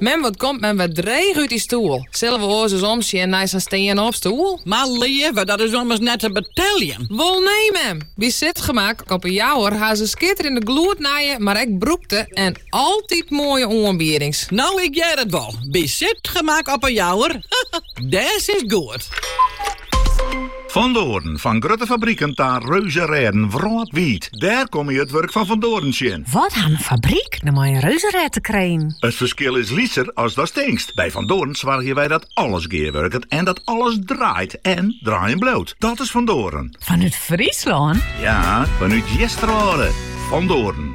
Mem wat komt mem wer dreech út dy stoel. Sille we oars ris omsjen nei sa'n stean-op stoel? Mar leave, dat is ommers net te beteljen. Wol nee mem! By Sitgemak op 'e Jouwer ha se skitterjende gloednije, mar ek brûkte en altyd moaie oanbiedings. No, ik hear it wol. By Sitgemak op 'e Jouwer, dêr sitst goed. Van Doren, fan grutte fabriken ta reuzerêden wrâldwiid. Dêr komme je it wurk fan Van Doren tsjin. Wat hat in fabryk no mei in reuzerêd te krijen? It ferskil is lytser as datst tinkst. By Van Doren soargje wy dat alles gearwurket en dat alles draait en draaien bliuwt. Dat is Van Doren. Fanút Fryslân? Ja, fanút Easterwâlde. Van Doren.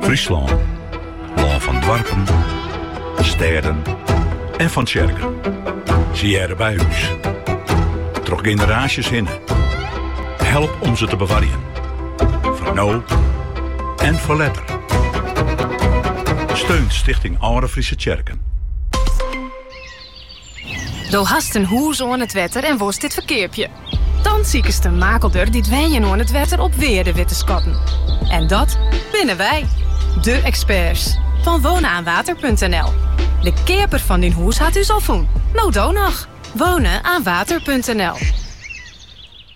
Fryslân. Lân fan doarpen, stêden en fan tsjerken. Se hearre by ús. Troch generaasjes hinne. Help om se te bewarjen. Foar no en foar letter. Steun Stichting Alde Fryske Tsjerken. Do hast in hûs oan it wetter en wolst dit ferkeapje? Dan sikest in makelder dy't wenjen oan it wetter op wearde wit te skatten. En dat binne wy, de eksperts fan wonenaanwater.nl. De keaper fan dyn hûs hat ús al fûn. No do noch! Wonenaanwater.nl.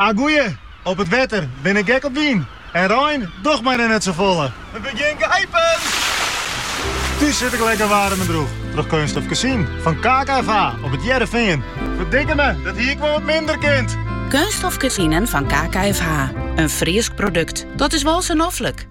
A goeie, op it wetter bin ik gek op wyn en rein, docht my dan net sa folle. We begjin gipen! Thús sit ik lekker waarm en drûch troch keunststof kezinen fan KKFH op it Hearrenfean. Ferdikke me, dat hie ik wol wat minder kind! Keunststof kezinen fan KKFH, in Frysk produkt, dat is wol sa noflik!